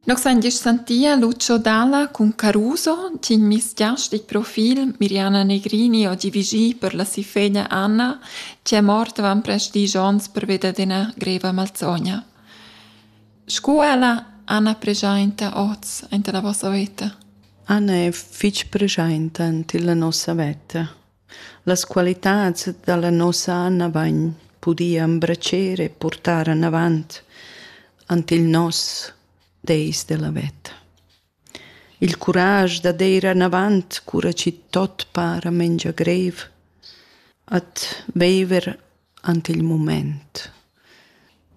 Nos ein gest sentia Lucio Dalla cun Caruso, tign misgiastic profil Miriana Negrini oggi vigì per la si feglia Anna, che è morta van prest dieci onns per veder d'ina greva malzogna. Sco ella, Anna pregiainta oz, enta la vossa veta. Anna è fitg pregiainta ante la nossa veta. Las qualitads dalla nossa Anna vain pudì embratscher e portar anavant ant il nos deis della veta. Il curage da deir anavant cura chi tot para mengia greiv, at veiver ant il mumaint.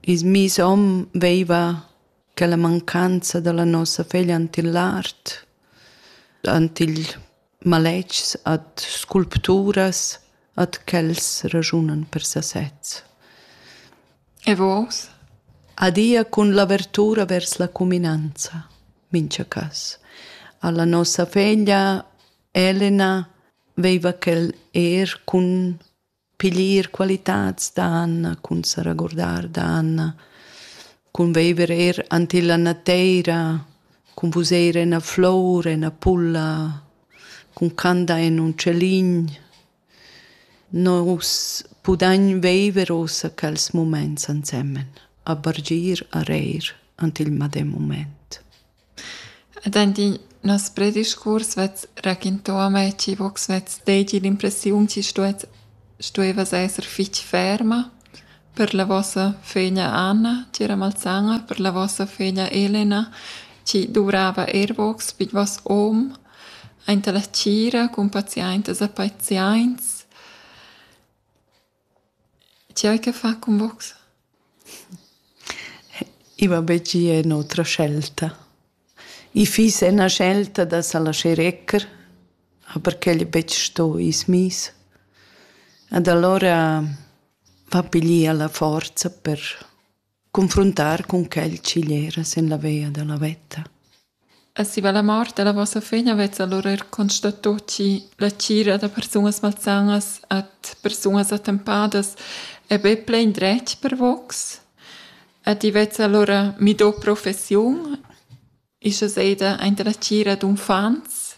I's miss hom veiva quella mancanza da la nossa feglia ant il art, ant il maletgs, ad sculpturas, ad quels ragiunan per sasez. E vos? Adia cun l'avertura vers la cuminanza, mincha cas. Alla nossa feglia Elena veiva quel er cun piglier qualitads dan cun sa regurdar dan cun viver eir ant illa nateira cun vuser ena flour ena pulla cun candar in ün celin nus pudagn viver uossa quels mumaints ansemen a bargir a reir ant il madem mumaint Ed aint in noss prediscurs vess raquintà a me chi vo'ch svess deigi l'impressiun chi stuess stueva esser fich ferma per la vossa föglia Anna, tg'era malsana, per la vossa föglia Elena chi duvrava eir vogs pi d'vos hom aint a la tgira cun paziaintas e paziaints. Ti hai che far cun vos? I va be gia en otra scelta. I fiss ena scelta da sa laschar ecker, aber quel è betg sto i's miss. Ed alura va piglier la forza per Confruntar cun quel schiglera sin la via dalla veta. E si va la mort dalla vossa fegna vezza allura er constato chi la tgira da persunas malsanas at persunas attempadas è be plein dretg per vox? E ti vezza allura mi do professiun? Ischa seida aint la tgira d'uffants,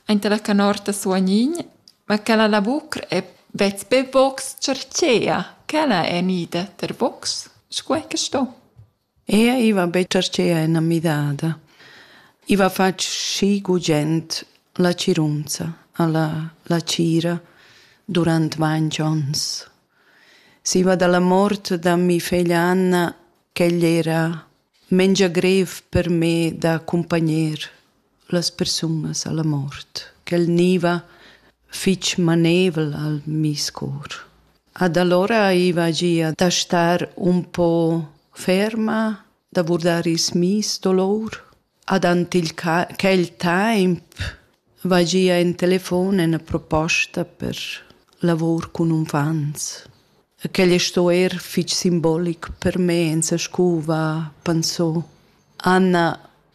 aint la canorta suonign, ma quella lavur è betg be box chartschea, quella è gnida per box, sco è que sto. Ea, i va be chartschea en a midada. I va fatg schi gugent la cirunza a la, la tgira durant ventg onns. Si va da la mort da mi feglia Anna, ch'egl era mengia grev per me da accumpagner las persunas alla mort, ch'el gniva fich maneivel al meis cor. Ad allora aiva gia da star un po ferma, da vurdar ils meis dolor. Ad ant il ca- quel temp Vai gia in telefon ena proposta per lavor cun uffants. Quel sto eir fich simbolic per me in sa scuva, pensò. Anna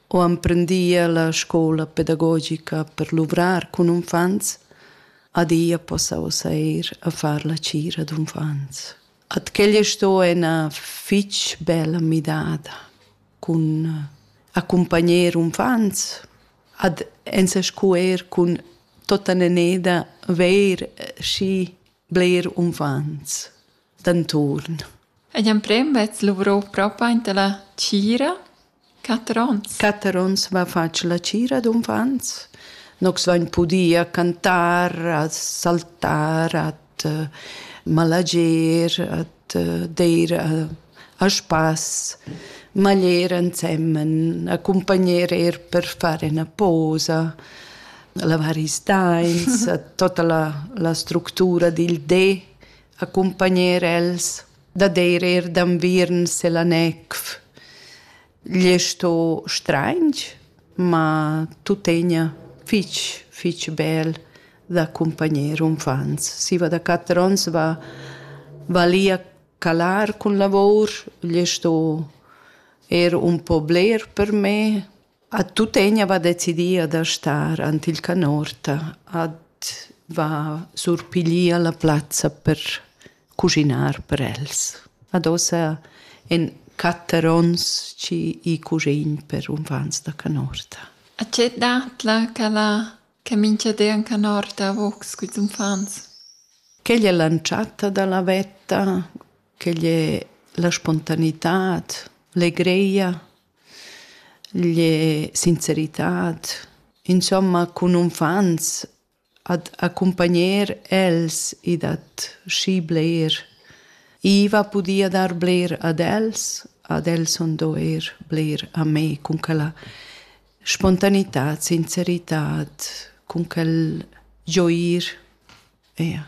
ho emprendia la scoula pedagogica per luvrar cun uffants. Adia possa ussa eir a far la cira d'uffants. At quella sto ena fitg bella midada cun eh, accumpagner uffants ad ensa scu eir cun totta neneda veir eh, schi bler uffants d'anturn. Ed amprem vezz luvro propa inta la tgira Quatter onns. Quatter onns va fatg la tgira d'uffants. Nox vain pudì a cantar, a saltar, at eh, malager, at eh, deir a, a spass, maglier ensemen, accompagner er per fare una posa, lavar i stains, tota la, la structura dil de, accompagner els. dad eir eir d'anviern sel anec gli sto strainch, ma tuttegna fich, fich bel da cumpagner umfants. Si va da quatter ons va, va li a calar cun lavour, gli sto eir un po bler per me, A tuttegna va decidia da star ant il canorta ad va surpiglier la plazza per cuschinar per els. Ad ossa en quatter ons chi i cuschin per unfants da canorta. A tge datla ch'ella che mincha di an canorta a vocs culs unfants? Quegl è l'antschatta da la vetta, quegl è la spontanitad, legreia. Lie sinceritad, insomma cun unfants ad accumpagner els e dat schi bler. Iva pudia dar bler ad els, ad els sun do eir bler a me cun quella spontanità, sinceritad, cun quel gioir. Eja.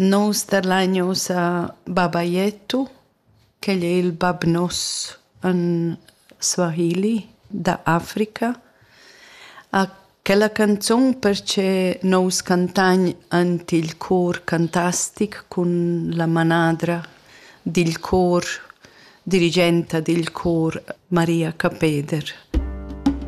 Nus tadlain ussa baba Jetto, ch'el è il bab nos in Swahili da Africa. A quella canzun perche nous cantagn ant il cor cantastic cun la manadra dil cor, dirigenta dil cor Maria Capeder.